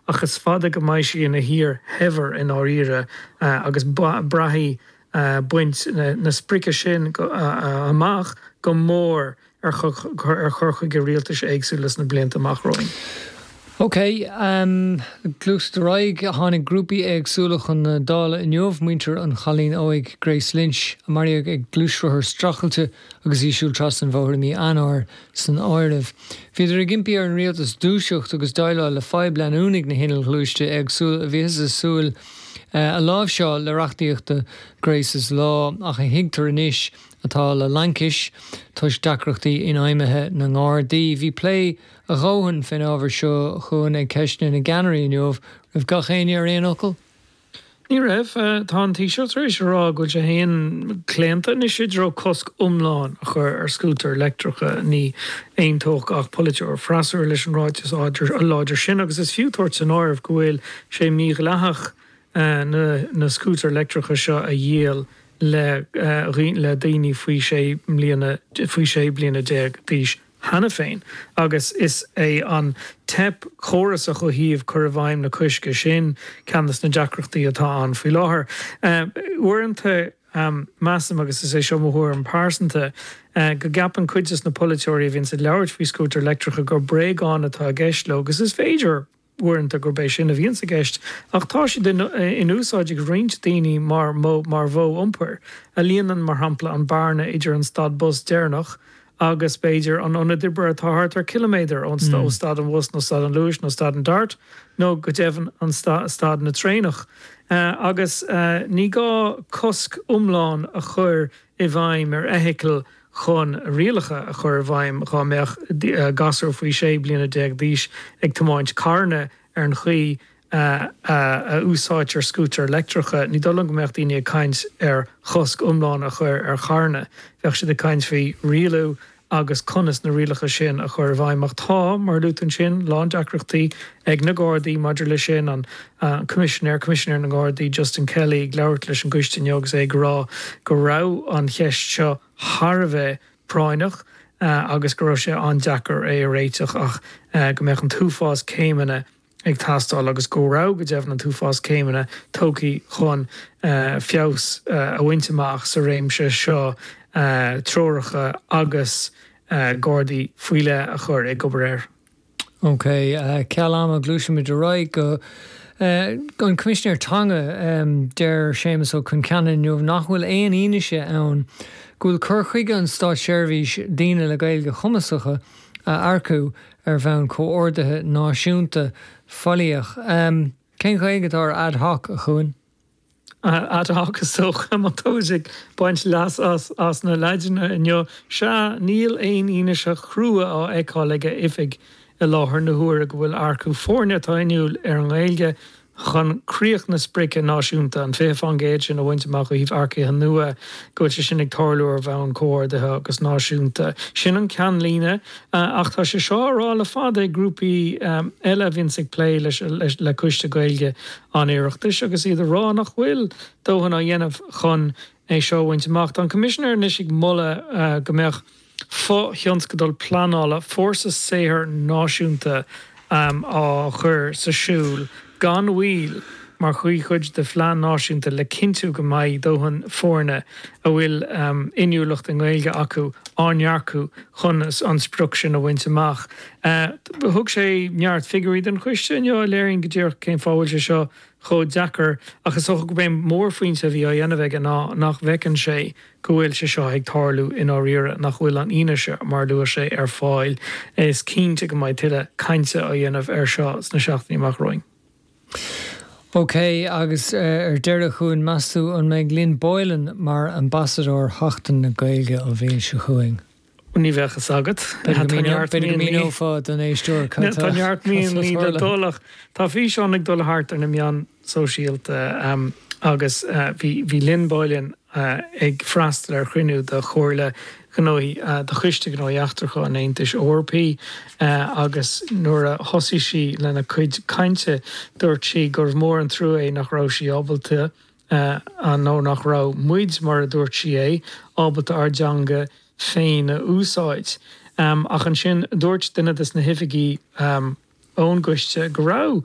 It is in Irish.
Ach is fada go mbeidh sí ina thír shaibhir i ndáiríre agus braithfidh baint na sprice sin amach go mór ar chur chuige rialtais éagsúla sna blianta amach romhainn. OK, gluaisimid ar aghaidh. Tháinig grúpaí éagsúla chun na Dála inniu, muintir an chailín óig Grace Lynch a maraíodh ag gluaisrothar streachailte, agus í ag siúl trasna an bhóthair i mí Eanáir san áireamh. Bhíodar ag impí ar an rialtas dúiseacht agus déileáil le fadhb leanúnaigh na hinnill ghluaiste éagsúla a bhíothas ag súil a láimhseáil le reachtaíocht Grace's Law ach a thuigtear anois atá faoi laincis toisc deacrachtaí infheidhmithe na nGardaí. Bhí plé a dhóthain fén ábhar seo ag Ceisteanna na gCeannairí inniu, an raibh gach éinne ar aon fhocal? Ní raibh. Tá an Taoiseach tar éis a rá go bhfuil sé féin claonta anois i dtreo cosc iomlán a chur ar scútair leictreacha. Ní aontódh gach polaiteoir freasúra leis an ráiteas láidir sin agus is fiú tabhairt san áireamh go bhfuil sé mídhleathach na scútair leictreacha seo a dhíol le daoine faoi 16 bliana d'aois. cheana féin agus is é an teip chórasach ó thaobh chur i bhfeidhm an choisc sin ceann des na deacrachtaí atá ann faoi láthair. Uaireanta measaim, agus is é seo mo thuairim pearsanta, go gceapann cuid des na polaiteoirí a bhíonns ag labhairt faoi scútair leictreacha gur bréagáin atá i gceist leo agus is féidir uaireanta gurb é sin a bhíonns i gceist, ach tá siad in úsáid ag roinnt daoine mar modh, mar mhodh iompair, a líonann, mar shampla, an bearna idir an stad bus deireanach agus, b'fhéidir, an ionad oibre atá thart ar chiliméadar ó stad an bhus, nó stad an Luais, nó stad an Dart, nó go deimhin stad na traenach. Agus ní gá cosc iomlán a chur i bhfeidhm ar fheithicil chun rialacha a chur i bhfeidhm dhá mbeadh gasúr faoi 16 bliana d'aois ag tiomáint carranna ar an chaoi a úsáidtear scútair leictreacha. Ní dóigh liom go mbeadh daoine ag caint ar chosc iomlán a chur ar charranna. Bheadh siad ag caint faoi rialú agus conas na rialacha sin a chur i bhfeidhm, ach tá, mar a luaitear ansin, a lán deacrachtaí ag na Gardaí maidir leis sin, an Coimisinéir, Coimisinéir na nGardaí, Justin Kelly, ag labhairt leis an gcoiste inniu agus é ag rá go raibh an cheist seo thar a bheith práinneach agus go raibh sé an-deacair é a réiteach ach go mbeadh an t-uafás céimeanna ag teastáil agus go raibh, go deimhin, an t-uafás céimeanna tugtha chun feabhas a bhaint amach sa réimse seo, treoracha agus gardaí faoi leith a chur ag obair air. OK, ceal ama, gluaisimid ar aghaidh go An Coimisinéir Teanga. Deir Séamas Ó Concheanainn inniu nach bhfuil aon fhianaise ann go bhfuil cur chuige na státseirbhíse daoine le Gaeilge chumasacha a earcú ar bhonn comhordaithe náisiúnta faillíoch. Cén Ghaeilge atá ar ad hoc, a Chuain? Ad hoc, is dócha, má tá muid ag baint leas as an Laidin inniu. Sea, níl aon fhianaise chrua á fheiceáil ag a oifig i láthair na huaire go bhfuil earcú foirne atá inniúil ar an nGaeilge chun críoch na sprice náisiúnta, an 20 faoin gcéad sin a bhaint amach ó thaobh earcaithe nua, go bhfuil sé sin ag tarlú ar bhonn comhordaithe agus náisiúnta. Sin an ceannlíne, ach tá sé seo á rá le fada ag grúpaí eile a bhíonns ag plé leis, le Coiste Gaeilge an Oireachtais, agus iad ag rá nach bhfuil dóthain á dhéanamh chun é seo a bhaint amach. Tá an Coimisinéir anois ag moladh go mbeadh. fo-thionscadal pleanála fórsa saothair náisiúnta á chur sa siúl gan mhoill mar chuid de phlean náisiúnta le cinntiú go mbeidh dóthain foirne a bhfuil inniúlacht i nGaeilge acu á n-earcú chun an sprioc sin a bhaint amach. Thug sé neart figiúirí don choiste inniu a léiríonn go díreach cén fáth a bhfuil sé seo chomh deacair ach is dócha gurb é an mórphointe a bhí á dhéanamh aige ná nach bhfeiceann sé go bhfuil sé seo ag tarlú i ndáiríre, nach bhfuil an fhianaise, mar a luaigh sé, ar fáil. Is cinnte go mbeidh tuilleadh cainte á dhéanamh air seo sna seachtainí amach romhainn. OK, agus ar deireadh, a Chuain, meas tú an mbeidh Lynn Boylan mar Ambasadóir Sheachtain na Gaeilge an bhliain seo chugainn? Ní bheadh fhios agat. B'fhéidir go míneodh, b'fhéidir go míneofá don éisteoir cad tá Tá neart míonna le dul ach tá físeán ag dul thart ar na meáin sóisialta agus bhí bhí Lynn Boylan ag freastal ar chruinniú de Chomhairle Gnóthaí de Choiste Gnóthaí Eachtracha an Aontais Eorpaí agus nuair a thosaigh sí lena cuid cainte dúirt sí gurbh mór an trua é nach raibh sí ábalta eadh nó nach raibh muid, mar a dúirt sí é, ábalta ár dteanga féin a úsáid. Ach ansin dúirt duine de na hoifigigh ón gcoiste go raibh.